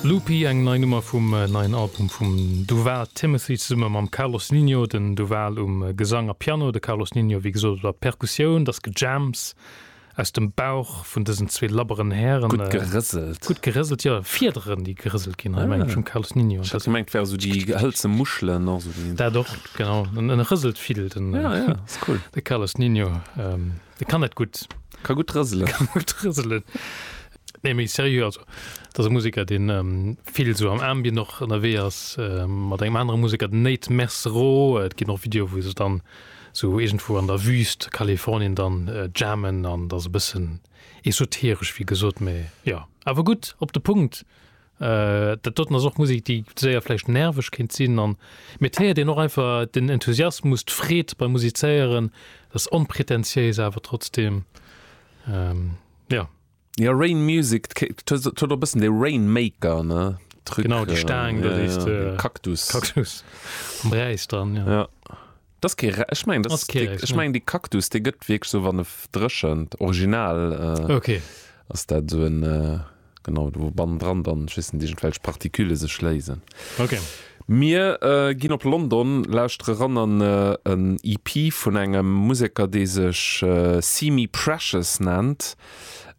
Loopy, eng nei Nummer vum neien Album vum Duval Timothy zesumme mam Carlos Ninho, den Duval um Gesang a Piano, de Carlos Ninho wéi gesot op der Perkussioun. Dass gejams aus dem Bauch vun dësen zwee labberen Hären. Gutt gerëselt. Gutt gerëselt, jo. Fiederen, déi gerëselt ginn hei, meng ech, um Carlos Ninho. Ech hat gemengt, et wäre sou déi hëlze Muschelen, och sou déi. Dat och, genau. E rëselt vill, den. Ja, ja, ass cool. De Carlos Ninho. De kann net gutt. Ka gutt rëselen. Ka gutt rëselen. Nee, méi serieux, also dat e Musiker, deen ähm, vill sou am Ambien noch ënnerwee ass, äh, mat engem anere Musiker, den Nate Mercero. Äh, et ginn och Video, wou se dann sou irgendwo an der Wüst Kalifornien dann äh, jammen an dat e bëssen esoteresch, wéi gesot, mee ja, awer gutt op de Punkt. Dat doten ass och Musek, déi séier vläicht nerveg kéint sinn an, mee et héiert een och einfach den Enthusiasmus, d'Freed beim Musizéieren, et ass onpretentiéis awer trotzdeem, jo. Jo, Rain Music, et huet och e bëssen dee Rainmaker, ne, Truc. Genau, déi Staang do, déi s de. Kaktus. Kaktus am Räis dran, jo. Dass kee Re ech mengen, dass kee Reis, ech mengen dee Cactus dee gëtt wierklech sou wann e dréchent, original äh okay. ass dat sou en äh genau wou bannendran dann ech weess net iergendwelch Partikülle sech léisen. Okay. Mir äh ginn op London, lauschtere ran an äh en EP vun engem Museker dee sech äh See Me Precious nennt.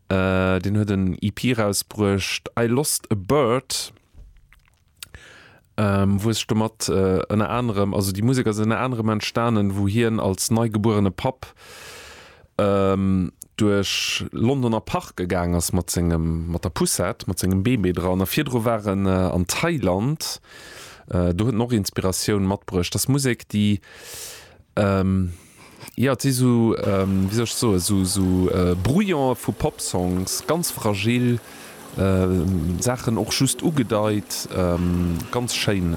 Äh deen huet en EP rausbruecht I Lost A Bird. ähm, wou e sech domat äh, ënner anerem, also déi Musek ass ënner anerem entstanen, wou hien als neigebuerene Papp ähm, duerch Londoner Parke gaang ass mat sengem mat der Poussette, mat sengem Bébé dran. A virdru war en äh, an Thailand, äh, do huet en och Inspiratioun matbruecht. Dass Musek, déi ähm, Jo, et si sou, wéi soll ech soen, sou Brouillon'e vu Pop-Songs, ganz fragil Saachen, och just ugedeit. Ganz schéin.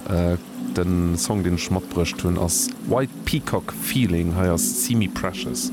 Den Song, deen ech matbruecht hunn ass White Peacock Feeling, hei ass Simi Precious.